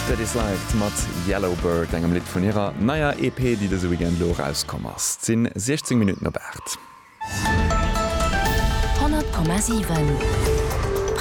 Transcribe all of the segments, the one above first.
Steady Slide mat Yellow Bird, engem Lidd vun hirer neier EP, déi dëse Weekend elo erauskomm ass. Et sinn 16 Minutten op 8. 100,7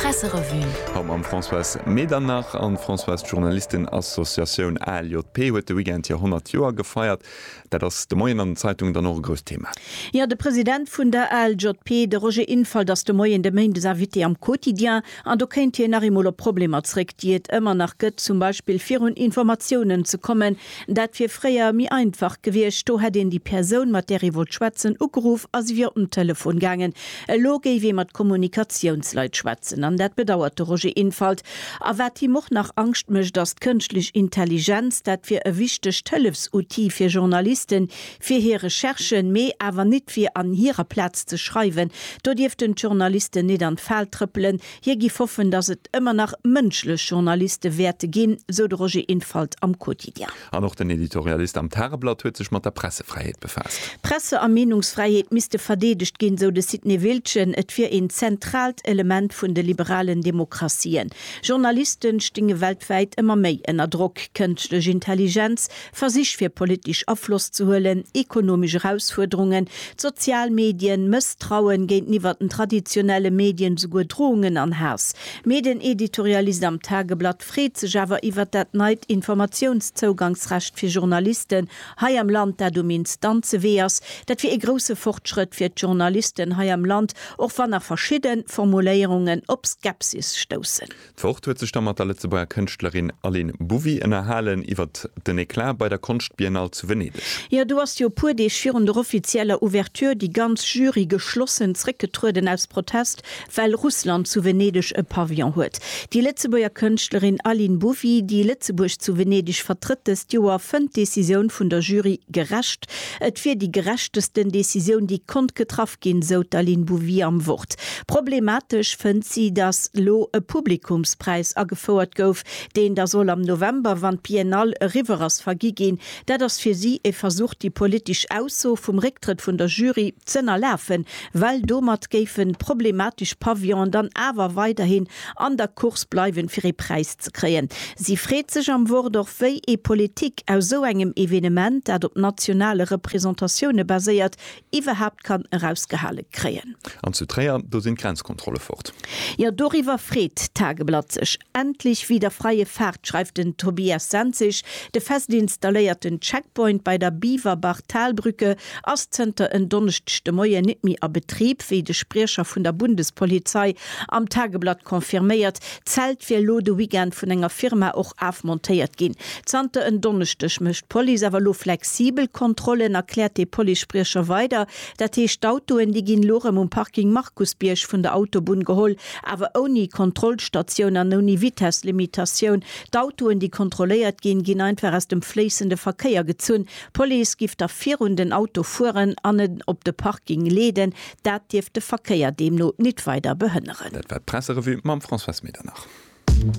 Presserevue. Haut mam Françoise Medernach. An d'Françoise, d'Journalistenassociatioun ALJP huet de Weekend hir 100 Joer gefeiert. Dat ass de Moien an den Zeitungen dann och e grousst Thema. Jo, de President vun der ALJP, de Roger Infalt, ass de Moien de Méindes Invité am Quotidien an do kéint hien nach eemol op d'Problemer zréck, déi et ëmmer nach gëtt, zum Beispill fir un Informatiounen ze kommen. Dat wier fréier méi einfach gewiescht, do hätt een déi Persoun, mat där ee wollt schwätzen, ugeruff a si wier op den Telefon gaangen. Elo géif ee mat Kommunikatiounsleit schwätzen an dat bedauert de Roger Infalt. A wat him och nach Angscht mécht, ass d'Kënschtlech Intelligenz. Dat wier e wichtegt Hëllefsoutil fir Journalisten, fir hir Recherchen, mee awer nit fir an hirer Plaz ze schreiwen. Do dierften d'Journalisten nit an d'Fal trëppelen. Hie giff hoffen, datt et ëmmer nach mënschlech Journaliste wäerte ginn, sou de Roger Infalt am Quotidien. An och den Editorialist am Tageblatt huet sech mat der Pressefräiheet befaasst. Presse a Meenungsfräiheet misste verdeedegt ginn, sou de Sidney Wiltgen. Et wier een zentraalt Element vun de liberalen Demokratien. Journaliste stinge weltwäit ëmmer méi ënner Drock. Kënschtlech Intelligenz, Versich fir politesch Afloss ze huelen, ekonomesch Erausfuerderungen, d'sozial Medien, Mësstrauen géinteniwwer den traditionelle Medien, souguer Drohungen an Haass. Mee den Editorialist am Tageblatt. freet sech awer iwwert dat neit Informatiounszougangsrecht fir Journalisten hei am Land, dat um Instanze Wee ass. Dat wier ee grousse Fortschrëtt fir d'Journalisten hei am Land, och wann nach verschidde Formuléierungen op Skepsis stoussen. D'Wort huet sech da mat der Lëtzebuerger Kënschtlerin Aline Bouvy ënnerhalen iwwert den Eclat bei der Konschtbiennale zu Venedeg. Jo, do ass jo e puer Deeg virun der offizieller Ouverture déi ganz Jury geschlossen zréckgetrueden aus Protest well Russland zu Venedeg e Pavillon huet. Déi Lëtzebuerger Kënschtlerin Aline Bouvy, déi Lëtzebuerg zu Venedeg vertrëtt dëst Joer, fënnt d'Decisioun vun der Jury gerecht. Et wier déi gerechtesten Decisioun, déi konnt getraff ginn, esou d'Aline Bouvy am Wort. Problematesch fënnt si, datt elo e Publikumspräis agefouert gouf, deen da soll am November, wann d'Biennale eriwwer ass, vergi ginn. Dat ass fir si e Versuch, déi politesch Ausso vum Récktrëtt vun der Jury z'ënnerlafen, well domat géifen problematesch Pavillone dann awer weiderhin an der Course bleiwen, fir ee Präis ze kréien. Si freet sech am Wort och, wéi ee Politik aus sou engem Evenement, dat op nationale Representatioune baséiert, iwwerhaapt kann erausgehale kréien. An zu Tréier, do sinn d'Grenzkontrolle fort. Jo, doriwwer freet d'Tageblatt sech. Endlich wieder freie Fahrt, schreift den Tobias Senzig. De fest installéierten Checkpoint bei der Biwerbach-Talbrücke ass zënter en Donneschdeg de Moien nit méi a Betrib, wéi de Spriecher vun der Bundespolizei am Tageblatt confirméiert. D'Zelt wier elo de Weekend vun enger Firma och afmontéiert ginn. Zanter en Donneschdeg mécht d'Police awer elo flexibel Kontrollen, erkläert de Policespriecher weider. Dat heescht, d'Autoen, déi ginn elo erëm um Parking Markusbierg vun der Autobunn geholl, awer ouni Kontrollstatioun an ouni Vitesslimitatioun. D'Autoen, déi kontrolléiert ginn, ginn einfach aus dem fléissende Verkéier gezunn. D'Police giff da virun den Auto fueren an en op de Parking leeden. Dat dierft de Verkéier deemno nit weider behënneren. Dat war d'Presserevue mam Françoise Medernach.